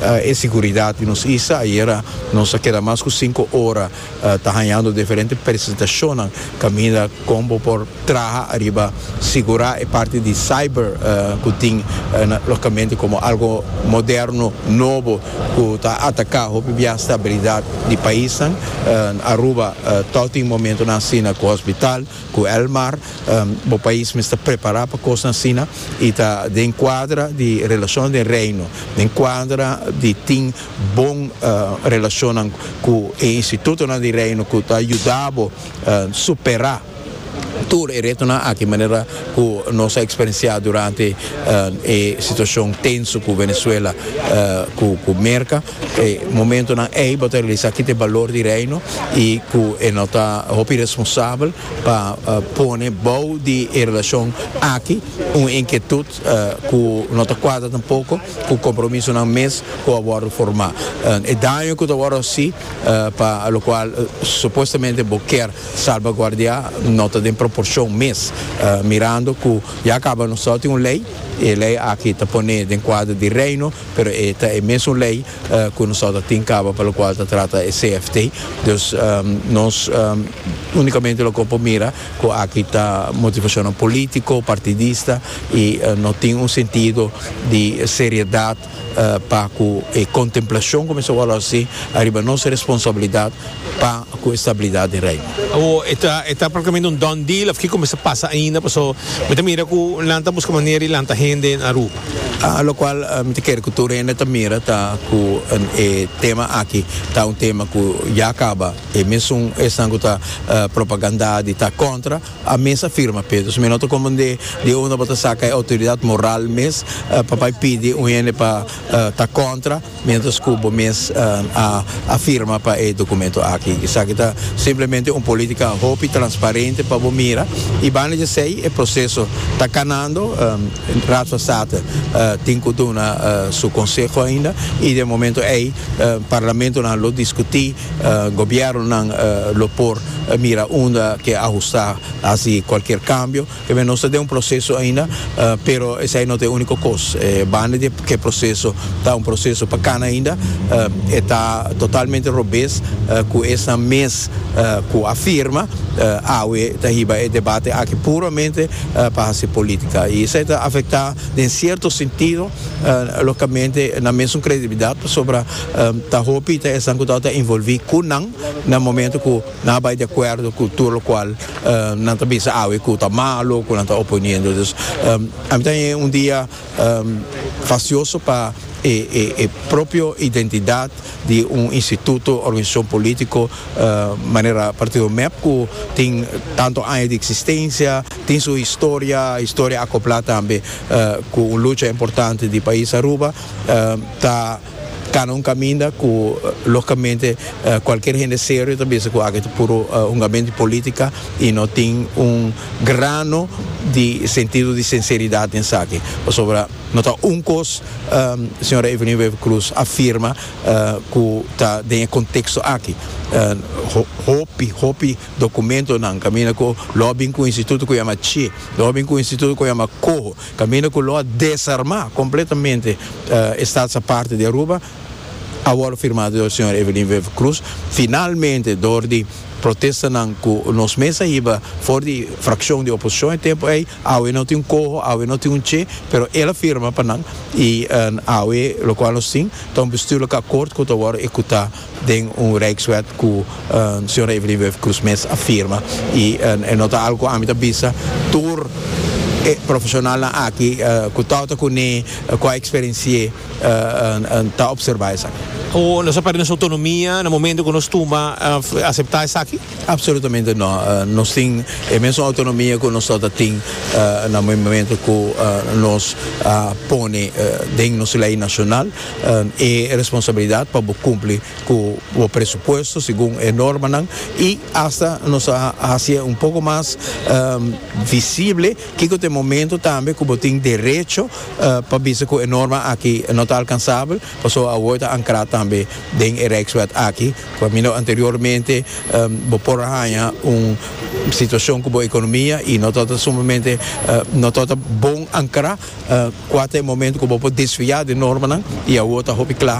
E siguridad di nos isla. Ayera nos a keda mas cu cinco ora ta hañando diferente presentacionnan caminda con bo por traha ariba sigura e parti di cyber cu tin locamente como algo moderno, nobo cu ta ataca hopi bia stabilidad di paisnan. Aruba ta tin momentonan asina cu hospital. Ku Elmar, Bo pais mester prepará pa kosnan asina i ta den kuadra di relashonnan den Reino, den kuadra di tin bon relashonnan ku e institutonan di Reino ku ta yuda bo superá tur e retonan aki manera ku nos a eksperensiá durante e situashon tenso ku Venezuela ku Merka. E momentonan ei bo ta realisá ki ta e balor di Reino i ku e no ta hopi responsabel pa pone bou di e relashon aki un inkietut ku no ta kuadra tampoko ku kompromisonan mes ku a wòrdu formá. E daño ku ta wòrdu hasí pa lokual supuestamente bo kier salbaguardiá no ta den proporshon mes, mirando ku ya kaba nos tabata tin un lei i e lei aki ta pone den kuadro di Reino, Pero e ta e mesun lei ku nosotros ta tin kaba pa lokual ta trata e CFT. Dus nos únikamente lo ke por mira ku aki ta motivashonnan polítiko, partidista i no tin un sentido di seriedat pa ku e kontemplashon ku mester wòrdu hasi ariba nos responsabilidat. pa cu e stabilidad den Reino. Awo e ta e ta practicamente un done deal of kico mester pasa ainda paso mi ta mira cu nan ta busca manera di lanta hende na Aruba. A locual mi ta kere cu tur hende ta mira ta cu e tema aki ta un tema cu ya caba y mesun esnan cu ta propaganda di ta contra a mes a firma pe entonces mi no ta comprende di unda bo ta saca e autoridad moral mes pa bay pidi un hende pa ta contra. mientras cu bo mes a firma pa e documento aki. Esaki ta simplemente un politica hopi transparente pa bo mira y banda di esey e proceso ta canando. Raad van State tin cu duna su conseho ainda y den momento ey parlamentonan lo discuti, gobiernonan lo por mira unda ke ajusta haci cualkier cambio. P'esei nos ta den un proseso ainda, pero esei no ta e uniko kos. Banda di ku e proseso ta un proseso pa kana ainda, e ta totalmente robes ku esnan mes ku a firma awe ta hiba e debate aki puramente pa hasi politika. I esei ta afektá den sierto sentido lokamente nan mesun kredibilidat pasobra ta hopi ta esnan ku tabata involví ku nan na momento ku. Nan a bai de acuerdo cu tur locual nan ta bisa awe cu ta malo o cu nan ta oponiendo. Dus a mitad e un dia fascioso pa e propio identidad di un instituto, organisacion politico manera Partido Mep cu tin tanto aña di existencia, tin su historia, historia acopla tambe cu un lucha importante di pais Aruba ta. Cana un caminda cu logicamente cualkier hende serio ta bisa cu aki ta puro un gamento di politica y no tin un grano di sentido di sinceridad den esaki pasobra no ta un cos señora Evelyn Wever Croes a firma cu ta den e contexto aki hopi hopi documentonan caminda cu lo a bin cu un instituto cu yama ce lo a bin cu un instituto cu yama coho. Caminda cu lo a desarma completamente e staats aparte di Aruba a worde firmado door señor Evelyn Wever Croes finalmente door di protestanan cu nos mes a hiba for di fraccion di oposicion e tempo ey. Awe no tin un coho, awe no tin un che, pero el a firma pa nan y awe locual nos tin ta un bestuurlijke akkoord cu ta worde ecuta. den un Rijkswet ku Sra. Evelyn Woeuf Croes mes a firma i e no ta algu ku ami ta bisa tur e profeshonalnan aki ku ta ota kuné, ku a eksperensié ta opservá esaki. Nos a pèrdè nos outonomia na momentu ku nos tumba aseptá esaki? Absolutamente no. Nos tin e mesun autonomia ku nos tata tin na momento ku nos a pone den nos lei nashonal e responsabilidat pa bo kumpli ku bo presupuesto segun e normanan i asta nos a hasié un poko mas visible kiko ta e momento tambe ku bo tin derecho pa bisa ku e norma aki no ta alkansabel pasobra awor ta ankrá tambe den e Rijkswet aki. Caminda anteriormente bo por a haña un situacion cu bo economia y no ta sumamente no ta bon ancra cua ta e momento cu bo por desfia den normanan y awor ta hopi cla.